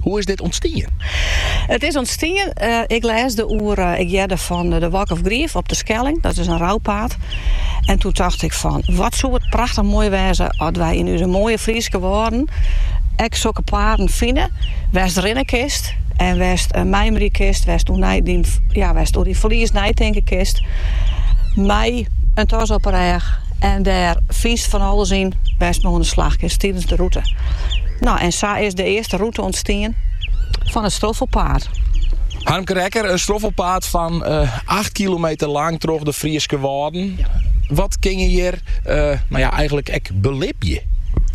Hoe is dit ûntstien? It is ûntstien, eh, ik lês de oer, eh, ik hearde fan de Walk of Grief op de Skelling, dat is in rouwpaad. En toen dacht ik van, wat zou het prachtig mooi wêze als wij in onze mooie Friese woorden ek zulke paden vinden, west rinnen kist en west uh, eh, mijmeren kist, west door, die, ja, west door die verlies nijtinken kist. Mij een tas op een reg En dêr sit fan alles yn wêr't men oan de slach is tidens de rûte. No, en sa is de earste rûte ûntstien fan it stroffelpaad. Harmke Rekker, in stroffelpaad fan acht kilometer lang troch de Fryske Wâlden. Wat kinne je hjir no eigenlik ek belibje?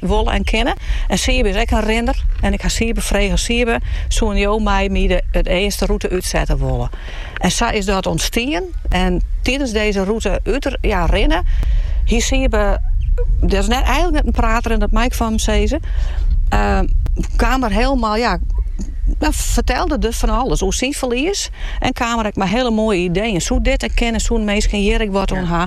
wolle en kinne. En Sybe is ek in rinner en ik ha Sybe frege, Sybe, soene jo mei my de it earste rûte útsette wolle? En sa is dat ûntstien en tidens dizze rûte út ja rinne hie Sybe, dat is net eigenlik net in prater en dat mei ik fan him sizze, kaam er hielemaal ja fertelde der fan alles oer syn ferlies en kaam er ek mei hiele moaie ideeën, soe dit ek kinne, soene minsken hjir ek wat oan ha.